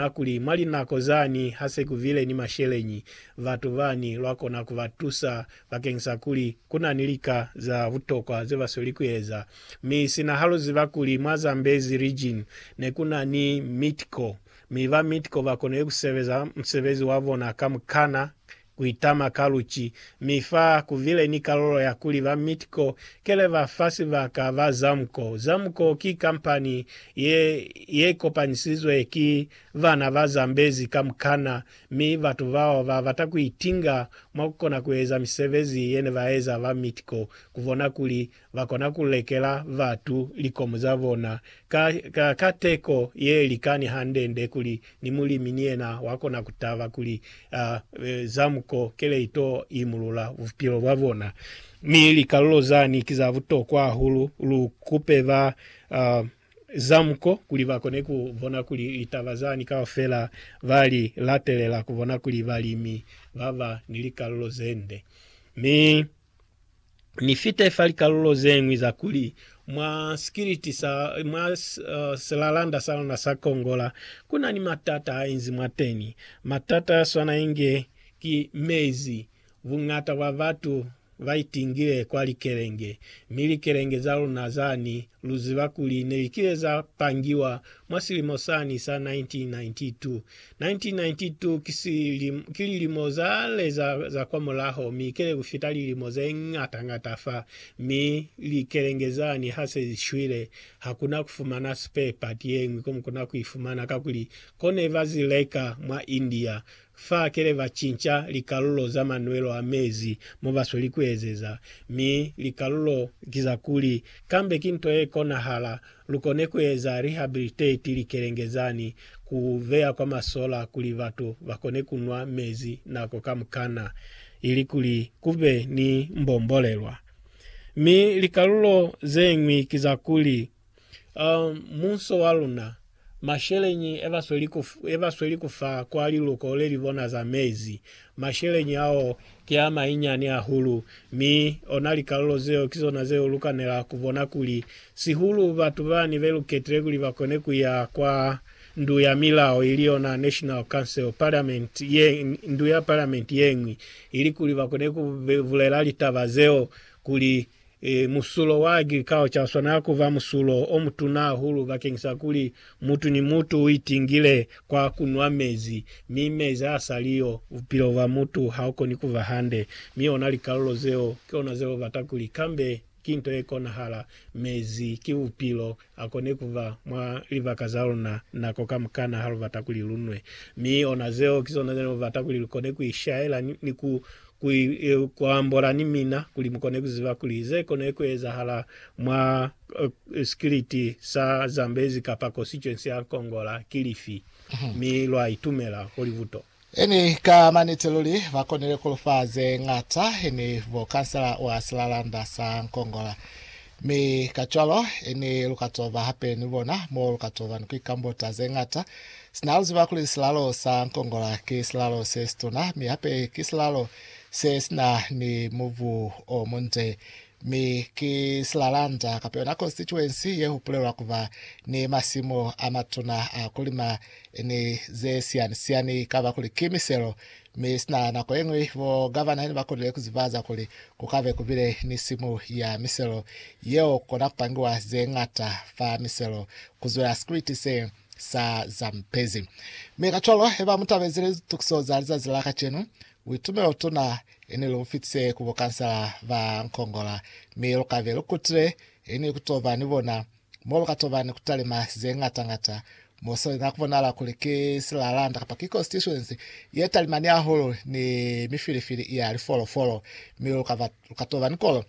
a kuli, Mwa linako zani ha se ku vile ni masheleñi, batu bani lwa kona ku ba tusa bakeng sa kuli ku na ni lika za butokwa ze ba sweli ku eza. Mi sina ha lu ziba kuli mwa Zambezi Region ne ku na ni Midco, mi ba Midco ba konile ku sebeza musebezi wa bona ka mukana Kuitama ka luci. Mi fa kuvile ni kalulo ya kuli ba Mitco kele ba fa sibaka ba Zamco. Zamco ki kampani ye, ye kopanisizwe ki bana ba Zambezi kamukana, mi batu bao ba bata kuitinga mwa kukona kueza misebezi yene baeza ba Mitco, kubona kuli Ba kona ku lekela batu likomo za bona ka, ka, ka teko ye likani hande-nde kuli ni mulimi ni yena wa kona ku taba kuli a, e, za muko kele ito imulula bupilo bwa bona. Mi likalulo zani ki za butokwa hahulu. Lu kupe ba, a, za muko kuli ba kone ku bona kuli litaba zani kaufela ba li latelela ku bona kuli balimi ba ba ni likalulo ze nde. Mi. Ni fite fa likalulo ze ñwi za kuli, mwa sikiliti sa, mwa uh, silalanda sa luna sa Kongola, ku na ni matata a inzi mwateni. Matata ya swana inge ki mezi. Buñata bwa batu ba itingile kwa likelenge, mi likelenge za luna zani, lu ziba kuli ne li kile za pangiwa mwa silimo sani sa 1992. 1992 ki lilimo za le za, za kwa mulaho, mi kele ku fita lilimo ze ñata ñata fa, mi likelenge zani ha se zi shwile, ha ku na ku fumana spare part ye ñwi ko mu kona ku i fumana, kakuli ko ne ba zi leka mwa India. Fa kele ba cinca likalulo za manwelo a mezi mo ba sweli ku ezeza, mi likalulo ki za kuli, kambe ki nto ye konahala Lu kone ku eza rehabilitate likelenge zani, ku veya kwa masola kuli batu ba kone ku nwa mezi nako kamukana, ilikuli ku be ni mbombolelwa. Mi likalulo ze ñwi ki za kuli, um, munso wa luna, masheleñi e ba sweli ku, e ba sweli ku fa kwa liluko le li bona za mezi, Masheleñi ao ki a mainyani hahulu, mi ona likalulo zeo ki zona zeo lu kanela ku bona kuli sihulu batu bani be lu ketile kuli ba kone ku ya kwa Ndu ya Milao, ili yona National Council, Parliament ye, Ndu ya Parliament ye ñwi, ili kuli ba kone ku bulela litaba zeo kuli I. Musulo wa agriculture u swanela ku ba musulo o mutuna hahulu bakeng sa kuli mutu ni mutu u itingile kwa ku nwa mezi, mi mezi ha a sa li yo, bupilo bwa mutu ha u koni ku ba hande. Mi ona likalulo zeo ki ona ze lu bata kuli kambe ki nto ye konahala. Mezi ki bupilo, A koni ku ba mwa libaka za luna nako kamukana ha lu bata kuli lu nwe. Mi ona zeo ki zona ze lu bata kuli lu kone ku ishaela ni, ni ku, ku, ku ambola ni mina, kuli mu kone ku ziba kuli ze kone ku ezahala mwa uh, sikiliti sa Zambezi kapa Constituency ya Nkongola ki lifi. Mi lwa itumela ho libuto. Ini ka maniti luli ba konile ku lu fa ze ñata, ini bo kansela wa silalanda sa Nkongola. Mi kacwalo, ini lu ka to ba hape ni bona mo lu ka to ba ni ku ikambota ze ñata, sina lu ziba kuli silalo sa Nkongola ki silalo se situna, mi hape ki silalo se si na ni mubu o munde, Mi ki Silalanda kapa yona constituency ye hupulelwa kuba ni masimu a matuna a kulima ni ze siani-siani. Ikaba kuli ki miselo, mi sina nako yeñwi bo gavana ne ba konile kuzibaza kuli kukabe kubile ni simu ya miselo yeo kukona kupangiwa ze ñata fa miselo, kuzwela Scritti se sa zampezi. Mi kacwalo, heba mutabezi litukiso za lizazi la kacenu, Buitumelo tuna ini lu fitise ku bo kansala ba Nkongola, mi lu kabe lu kutile ini ku to ba ni bona, mo lu ka to ba ni ku talima ze ngata ngata. Mo seli na ku bonala kuli ki silalanda kapa ki constituency ye talimani hahulu ni mifilifili ya lifolofolo, mi lu ka ba, lu ka to ba ni kolo.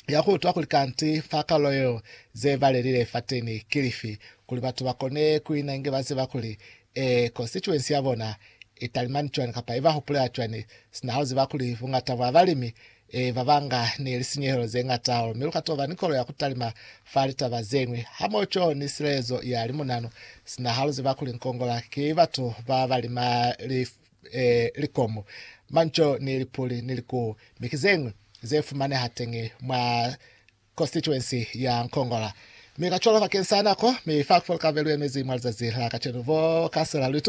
ya ku utwa kuli kanti fa kalulo yeo ze balelile fateni ki lifi, kuli batu ba kone ku ina inge ba ziba kuli, ee, konsituensi ya bona i talimani cwani kapa i ba hupulela cwani, sina ha u ziba kuli buñata bwa balimi, ee, ba banga ni lisinyehelo ze ñata hahulu, mi lu ka toba ni kolo ya ku talima fa litaba ze ñwi, hamoho cwalo ni silelezo ya limunanu, sina ha lu ziba kuli nkongola ki batu ba ba lima lifi. eh, likomu, manco ni lipuli ni likuu, mi ki zeñwi ze fumaneha teñi mwa constituency ya Nkongola. Mi kacwalo bakeng sa nako, mi fa Afrika Borwa lu emezi mwa lizazi la kacenu, bo kansela lu itubela